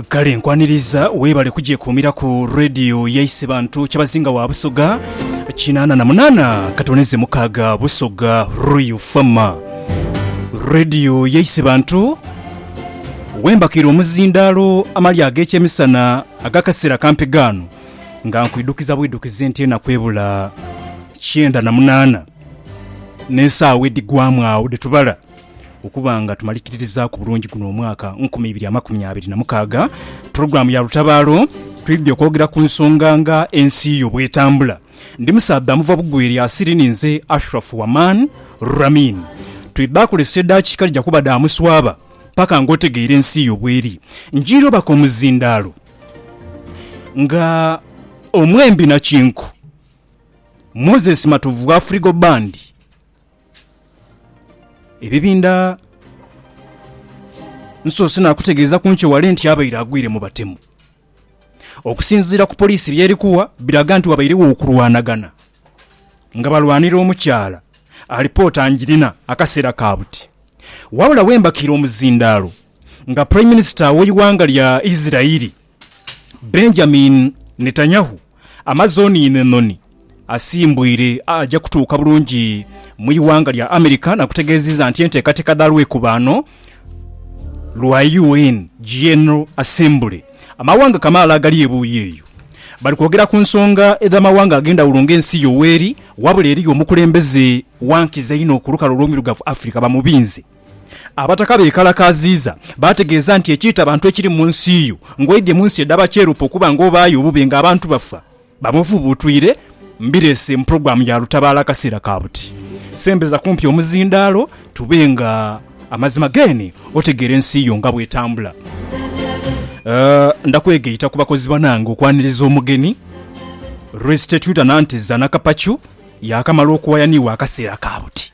Kale nkwaniriza webale kugyekuumira ku Radio yaise bantu Kyabazinga wa Busoga kinaana na munaana katoneze mukaaga Busoga Royal Farmer Radio yaise bantu wembakira omuzindaalo amali ag'ekyemisana ag'akaseera kampi gaano nga nkwidukiza bwidukizi nti enaku ebula kyenda na munaana n'esaawa edhigwamu agho dhetubala. Okuba nga tumalikirizaaku bulungi guno omwaka nkumi ibiri amakumi abiri na mukaaga, pulogulaamu ya Lutabaalo twidhidhia okwogera ku nsonga nga ensi yo bw'etambula. Ndi musaadha muva bugwere asiri ni nze Ashraf Waman Ramin. Twidha kozesa edaakiika dhija kuba dha muswaba paka ng'otegeire ensi yo bw'eri. Njira obaka omuzindaalo nga omwembi na kinku Moses Matovu wa Frigo Band. Ebibinda nsoose naakutegeeza ku nkyo wale nti abaire agwire mu batemu. Okusinziira ku poliisi by'eri kuwa biraga nti wabairegho okulwanagana nga balwanira omukyala, alipoota ngirina akaseera ka buti. Wabula wembakiire omuzindaalo nga Prime Minister w'eighanga lya Israel, Benjamin Netanyahu amaze oniino enhonhi asimbwire aja kutuuka bulungi mu ighanga lya America na kutegeziza nti entekateka dha lwekubaano lwa UN General Assembly amawanga kamaala agali ebuuyi eyo bali kwogera ku nsonga edha mawanga agendhawulo nga ensi yoweeri wabula eriyo omukulembeze wankiza inho ku lukalu olwomirugavu Africa bamubinze Abataka beekalakaaziiza, baategeeza nti, Ekiita abantu ekiri mu nsi yo, ng'oidhie mu nsi edha bakyerupe okuba ng'obaayo obubi ng'abantu bafa, bamufubuutwire, mbireese mu pulogulaamu ya Lutabaalo akaseera ka buti. Sembeza kumpi omuzindaalo tube nga amazima geene otegeera ensi yo nga bw'etambula. Ndakwegaita ku bakozi banange okwaniriza omugeni. Restituta Nanteza Nakapacu yaakamala okuwaya ni wa akaseera ka buti.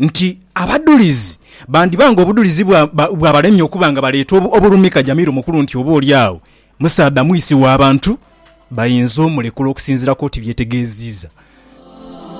nti abadhulizi bandiba nga obudhulizi bwabalemye okuba nga baleeta obulumika Jamiru Mukulu nti oba oli agho musaadha mwisi wa bantu bayinza omulekula okusinziira ku oti byetegeeziiza.